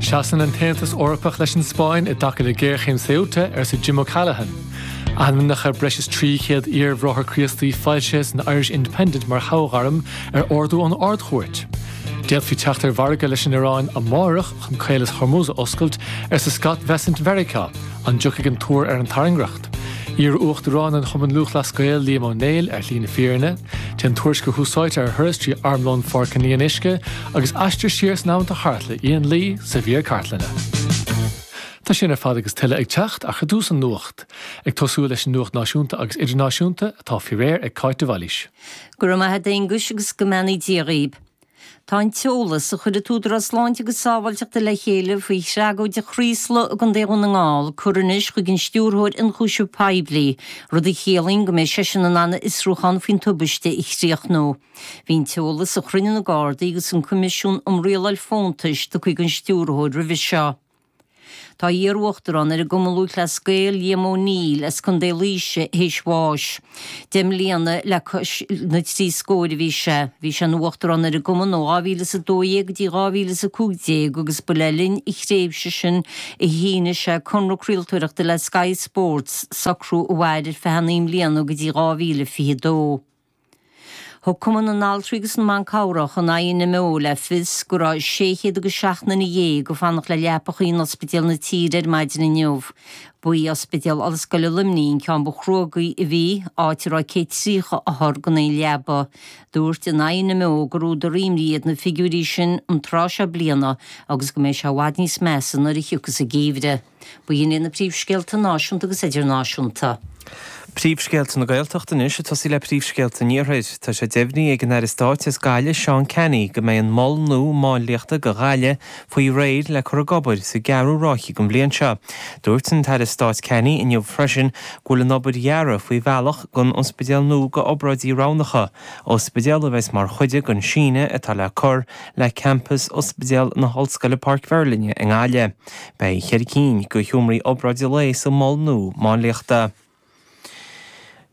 Seasann an tAontas Eorpach leis an Spáinn i dtaca le géarchéim Ceuta, arsa Jim O'Callaghan. Ainmneacha breis is 300 iar-Bhráithre Críostaí foilsithe san Irish Independent mar shoghairm ar ordú ón Ard-Chúirt. D'fhéadfaí teacht ar mhargadh leis an Ioráin amárach chun Caolas Hormuz a oscailt, arsa Scott Bessent Mheiriceá. An dtiocfaidh an tuar faoin tairngreacht? Iar-Uachtarán an Chumainn Lúthchleas Gael, Liam Ó Néill ar shlí na fírinne. Téann Tuairisc Adhmhaidin ar thuras trí armlón Pháirc an Fhionnuisce agus aistir siar san amanta thart le Ian Lee sa mhír chartlainne. Tá sin ar fad agus tuilleadh ag teacht ach ar dtús an nuacht, ag tosú leis an nuacht náisiúnta agus idirnáisiúnta atá faoi réir ag Cáit de Bhailís. Go raibh maith 'ad a Aonghuis agus go mbeannaí Dia dhaoib. Tá an t-eolas a chuir an tÚdarás Sláinte agus Sábháilteachta le chéile faoi thragóid Chraoslaigh i gContae Dhún na nGall curtha anois chuig an Stiúrthóir Ionchúiseamh Poiblí, rud a chiallaíonn go mbeidh seisean in ann a fhiosrúchán faoin tubaiste a chríochnú. Bhí an t-eolas a chruinnigh na Gardaí agus an Coimisiún um Rialáil Fóntais curtha chuig an Stiúrthóir roimhe seo. Tá iar-uachtarán ar an gCumann Lúthchleas Gael, Liam O'Neill, as Contae Laoise, théis bháis. Deich mbliana le cois na trí scóir a bhí sé. Bhí sé ina uachtarán ar an gcumann ó 2012 go dtí 2015 agus ba le linn a thréimhse sin a shínigh sé conradh craoltóireachta le Sky Sports, socrú a mhair ar feadh naoi mbliana go dtí 2022. Thug Cumann na nAltraí agus na mBan Cabhrach an INMO le fios go raibh sé chéad agus seacht nduine dhéag ag fanacht le leapacha in ospidéil na tíre ar maidin inniu. Ba é Ospidéal Ollscoile Luimnigh an ceann ba chruógaí a bhí, áit a raibh céad tríocha othar gan aon leaba. Dúirt an INMO gur údar imní iad na figiúirí sin an tráth seo bliana agus go mbeidh sé i bhfad níos measa nuair a thiocfas an geimhreadh. Ba iad sin na príomhscéalta náisiúnta agus idirnáisiúnta. Príomhscéalta na Gaeltachta anois ag tosú le príomhscéalta an Iarthair. Tá sé deimhnithe ag an Aire Stáit as Gaillimh Seán Canney go mbeidh an Mol Nua Máinliachta do Ghaillimh faoi réir le cur ag obair sa gceathrú ráithe den bhliain seo. Dúirt an tAire Stáit Canney inniu freisin go bhfuil an obair deartha faoi bhealach don ospidéal nua d'obráidí roghnacha, ospidéal a bheas mar chuid den síneadh atá le cur le campas Ospidéal na hOllscoile Páirc Mheirlinne i nGaillimh. Beidh ceithre cinn de sheomraí obráide lae sa mhol nua máinliachta.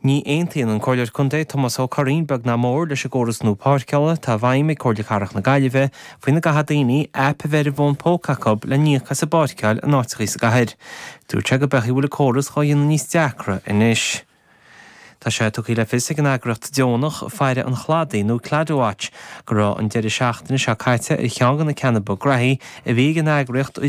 Ní aontaíonn an Comhairleoir Contae Tomás Ó Curraoin beag ná mór leis an gcóras nua páirceála atá i bhfeidhm ag Comhairle Cathrach na Gaillimhe faoina gcaithfidh daoine aip a bheith ar a bhfón póca acu le n-íoc as a bpáirceáil in áiteachaí sa gcathair. Dúirt sé gurb amhlaidh a bhfuil an córas dhá dhéanamh níos deacra anois. Tá sé tugtha le fios ag an eagraíocht deonach Faire an Chladaigh nó Claddagh Watch go raibh an deireadh seachtaine seo caite ar cheann de na ceanna ba graithí a bhí ag an eagraíocht ó